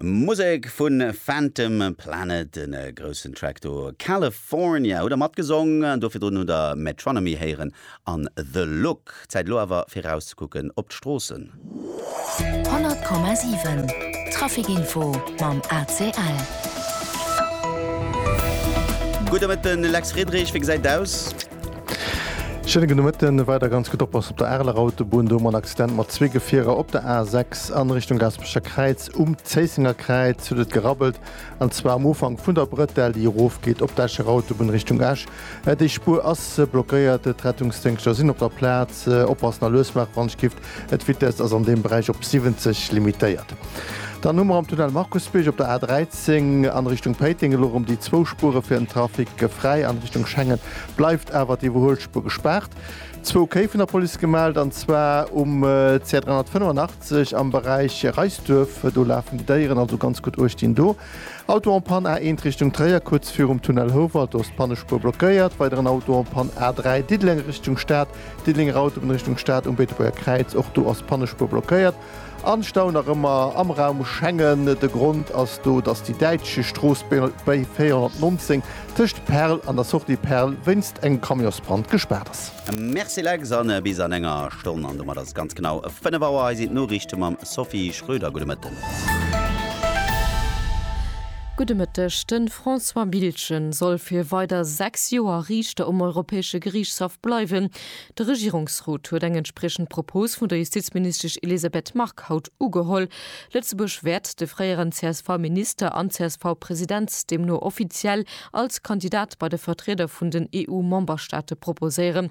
Musek vun Phantom Planet, en groussen Track do, California hutt der matgesong, do virdrun hutt der Metronomy héieren an The Look. Zäit elo awer fir erauszekucken op d'Stroossen. 100,7 Trafic-Info mam ACL. Gudde Mëtten, Lex Friedrich, wéi gesäit et aus? Schéine gudde Mëtten. Weider ganz gutt oppassen op der Areler Autobunn. Do hu mer en Accident mat zwee Gefierer op der A6 a Richtung Gaasperecher Kräiz. Um Zéissenger Kräiz huet et gerabbelt, an zwar um Ufank vun der Brëtell, déi erofgeet op d'Escher Autobunn Richtung Esch. Déi Spuer ass blockéiert. D'Rettungsdéngschter sinn op der Plaz. Oppassen a lues maache wann et kifft. D'Vitess ass an deem Beräich op 70 limitéiert. Dann hu mer am Tunnel Markusbierg op der A 13 an Richtung Péiteng elo erëm déi zwou Spuere fir den Trafic fräi. An Richtung Schengen bleift awer d'Iwwerhuelspuer gespaart. Zwou Kéi vun der Police gemellt, an zwar um CR 385 am Beräich Reisduerf. Do lafen déi Déieren, also ganz gutt uecht dinn do. Auto en panne A 1 Richtung Tréier, kuerz virum Tunnel Houwald, do ass d'Pannespuer blockéiert. Weideren Auto en panne A 3 Diddeleng Richtung Stad, D'Diddelenger Autobunn Richtung Stad um Beetebuerger Kräiz, och do ass d'Pannespuer blockéiert. An ech staunen nach ëmmer am Raum Schengen. De Grond ass do, dass déi däitsch Strooss BL 419 tëscht Perl an der Sortie Perl wéinst engem Camionsbrand gespaart ass. Merci Lex an bis an enger Stonn an domat ass et ganz genau 5 Auer. Hei sinn d'Noriichte mam Sophie Schröder. Gudde Mëtten. Gudde Mëtteg. De François Biltgen soll fir weider 6 Joer Riichter um Europäesche Geriichtshaff bleiwen. De Regierungsrot huet eng entspriechend Propos vun der Justizministesch Elisabeth Margue haut ugeholl. Lëtzebuerg wäert de fréieren CSV-Minister an CSV-President deemno offiziell als Kandidat bei de Vertrieder vun den EU-Memberstaate proposéieren.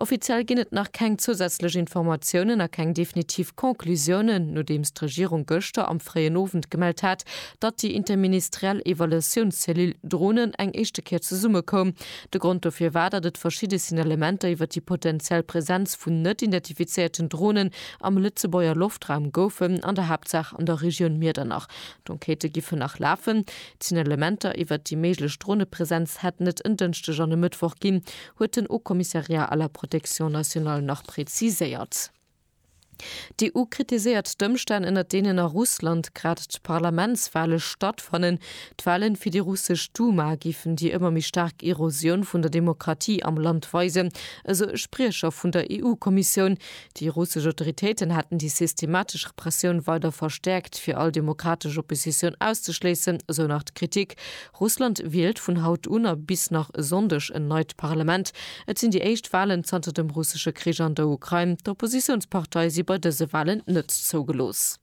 Offiziell ginn et nach keng zousätzlech Informatiounen a keng definitiv Conclusiounen, nodeems d'Regierung gëschter am fréien Owend gemellt hat, datt déi interministeriell Evaluatiounscellule Dronen eng éischte Kéier zesummekoum. De Grond dofir war, datt et verschidde Signalementer iwwer déi potenziell Presenz vun net identifizéierten Dronen am Lëtzebuerger Loftraum goufen, an der Haaptsaach an der Regioun Miedernach. D'Enquêtë giffen nach lafen. D'Signalementer iwwer déi méiglech Dronepresenz hätten et en Dënschdeg an e Mëttwoch ginn, huet den Haut Commissariat à la protection nationale nach preziséiert. D'EU kritiséiert d'Ëmstänn, ënner deenen a Russland grad d'Parlamentswale stattfannen. D'Walen fir déi russesch Duma géifen déi ëmmer méi staark Erosioun vun der Demokratie am Land weisen, esou e Spriecher vun der EU-Kommissioun. Déi russesch Autoritéiten hätten déi systematesch Repressioun weider verstäerkt, fir all demokratesch Oppositioun auszeschléissen, esou nach d'Kritik. Russland wielt vun haut un a bis nach e Sonndeg en neit Parlament. Et sinn déi éischt Walen zanter dem russesche Krich an der Ukrain. D'Oppositiounsparteie si bei dëse Walen net zougelooss.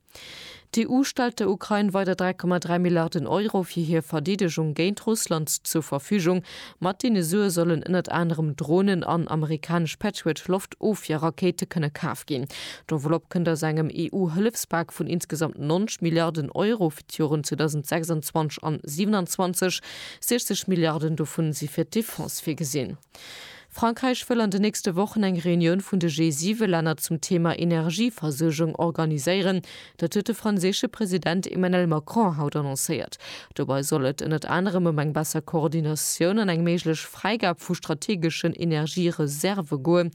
D'EU stellt der Ukrain weider 3,3 Milliarden Euro fir hir Verdeedegung géint Russland zur Verfügung. Mat deene Sue sollen ënnert anerem Dronen an amerikanesch Patriot-Loftofwierrakéite kënne kaf ginn. D'Enveloppe kënnt aus engem EU-Hëllefspak vun insgesamt 90 Milliarden Euro. D'Joren 2026 an 27, 60 Milliarden dovun si fir d'Defense virgesinn. Frankräich wëll an de nächste Wochen eng Reunioun vun de G7-Länner zum Thema Energieversuergung organiséieren. Dat huet de franséische President Emmanuel Macron haut annoncéiert. Dobei soll et ënnert anerem ëm eng besser Koordinatioun an eng méiglech Fräigab vu strategeschen Energiereserve goen.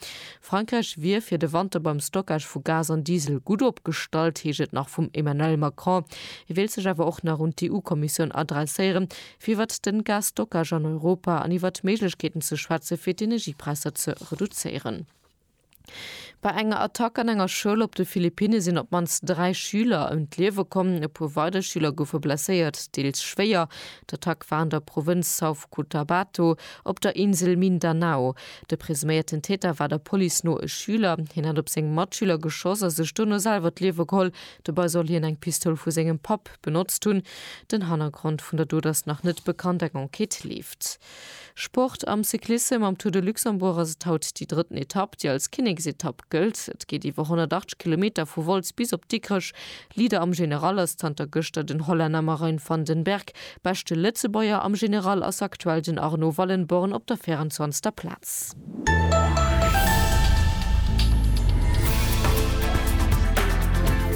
Frankräich wier fir de Wanter beim Stockage vu Gas an Diesel gutt opgestallt, heescht et nach vum Emmanuel Macron. Hie wéilt sech awer och nach un d'EU-Kommissioun adresséieren, fir iwwert den Gas-Stockage an Europa an iwwert Méiglechkeeten ze schwätze fir d'Energiepräisser ze reduzéieren. Bei enger Attack an enger Schoul op de Philippinne sinn op d'mannst dräi Schüler ëm d'Liewe komm. E puer weider Schüler goufe blesséiert, deels schwéier. D'Attack war an der Provënz South Cotabato op der Insel Mindanao. De presuméierten Täter war der Police no e Schüler. Hien hätt op seng Matschüler geschoss a sech dono selwer d'Liewe geholl. Dobei soll hien eng Pistoul vu sengem Papp benotzt hunn. Den Hannergrond vun der Dot ass nach net bekannt, eng Enquête leeft. Sport Am Cyclissem am Tour de Luxembourg ass et haut déi drëtten Etapp, déi als Kinneksetapp gëllt. Et geet iwwer 180 Kilometer vu Wolz bis op Dikrech. Leader am General ass zanter gëschter den Hollänner Marijn van den Berg. Beschte Lëtzebuerger am General ass aktuell den Arno Wallenborn op der 24. Plaz.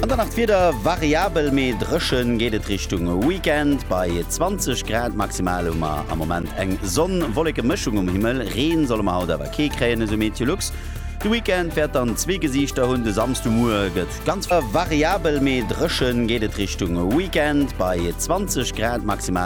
An dann nach d'Wieder, Variabel mee dréchen geet et Richtung Weekend. Bei 20 Grad maximal hu mer am Moment eng Sonn-Wolleke-Mëschung um Himmel. Reen solle mer haut awer kee kréien, esou Meteolux. De Weekend wäert dann zwee Gesiichter hunn, de Samsdemuer gëtt Ganz variabel, mee dréchen geet et Richtung Weekend bei 20 Grad maximal.